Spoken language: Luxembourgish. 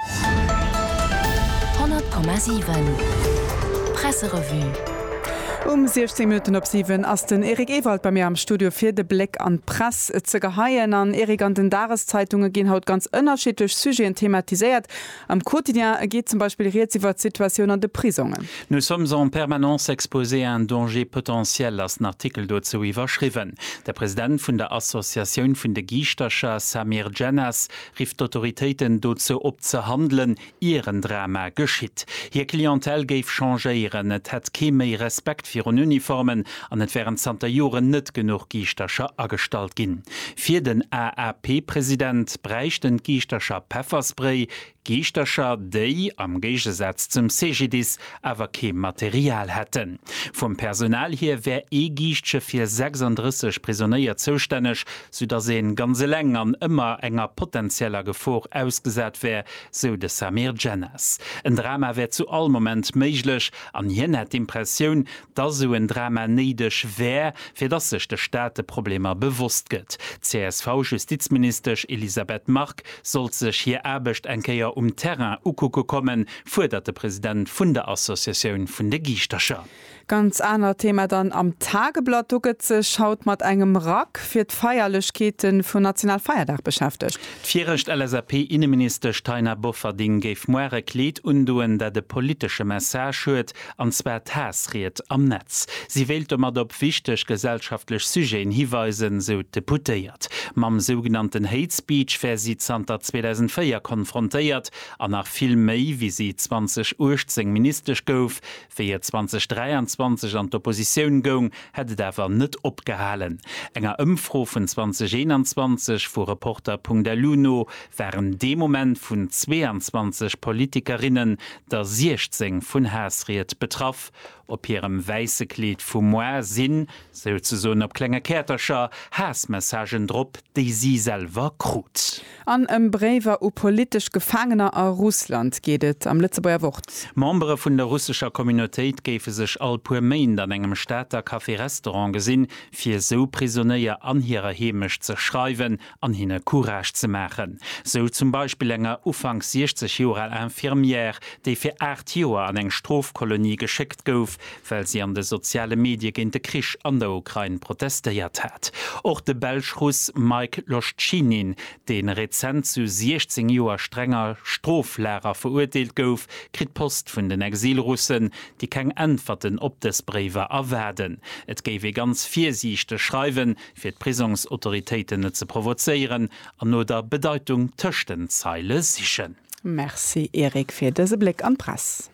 100,7 Presserevue Um 16 Minutten op 7 ass den Eric Ewald bei mir am Studio fir de Bléck an d'Press ze geheien. An Eric, an den Dageszeitunge ginn haut ganz ënnerschiddlech Sujeten thematiséiert. Am Quotidien geet zum Beispill rieds iwwer d'Situatioun an de Prisongen. Nous sommes en permanence exposés à un danger potentiel ass den Artikel dozou iwwerschriwwen. De President vun der Associatioun vun de Giischtercher, Samir Djennas, rifft d'Autoritéiten dozou op ze handelen, ier en Drama geschitt. Hir Clientèle géif changéieren, et hätt kee méi Respekt virun Uniformen an et wären zanter Joren net genuch Giischtercher agestallt ginn. Fir den AAP-President bräichten d'Giischtercher Pefferspray, Giischtercher, déi, am Géigesaz zum CGDIS, awer kee Material hätten. Vum Personal hier wär ee Giischtsche fir 36 Prisonéier zoustänneg, soudass een ganz eleng an ëmmer enger potentieller Gefor ausgesat wär, sou de Samir Djennas. En Drama wär zu all Moment méiglech an hien hätt d'Impressioun, dass sou en Drama néideg wär, fir dass sech de Staat de Problemer bewosst gëtt. D'CSV-Justizministesch Elisabeth Margue sollt sech hir Aarbecht eng Kéier um Terrain ukucke kommen, fuerdert de President vun der Associatioun vun de Giischtercher. Ganz anert Thema dann am Tageblatt, do gëtt sech haut mat engem Rack fir d'Feierlechkeete vun Nationalfeierdag beschäftegt. D'virecht LSAP-Inneministesch Taina Bofferding géif muar e Kleed undoen, dat e politesche Message huet, an zwar d'Haassried am Netz. Si wéilt domat op wichteg gesellschaftlech Sujeten hiweisen, sou d'Deputéiert. Mam sougenannten Hate Speech wär si zanter 2004 konfrontéiert, an nach vill méi, wéi si 2018 Ministesch gouf. Wéi et 2023 an d'Oppositioun goung, hätt et awer net opgehalen. Enger Ëmfro vun 2021 vu Reporter.lu no waren dee Moment vun 22 Politikerinnen der 16 vun Haassried betraff. Op hirem wäisse Kleed vu Moire sinn, souzesoen op klenge Käertercher, Haassmessagen drop, déi si selwer krut. An ëm Bréiwer u politesch Gefaangener a Russland geet et am Lëtzebuerger Wort. Membere vun der russescher Communautéit géife sech all puer Méint an engem Stater Café-Restaurant gesinn, fir esou Prisonéier an hirer Heemecht ze schreiwen an hinne Courage ze maachen. Sou zum Beispill enger ufanks 60 Joer al Infirmière, déi fir aacht Joer an eng Strofkolonie geschéckt gouf, well si an de soziale Medie géint de Krich an der Ukrain protestéiert hat. Och de Belsch-Russ Mike Loschtschinin, dee rezent zu 16 Joer strenger Stroflager verurteelt gouf, kritt Post vun den Exilrussen, déi keng Äntwerten op dës Bréiwer erwaarden. Et géif ee ganz virsiichteg schreiwen, fir d'Prisongsautoritéiten net ze provozéieren, an no der Bedeitung tëscht den Zeile sichen. Merci Eric fir dëse Bléck an d'Press.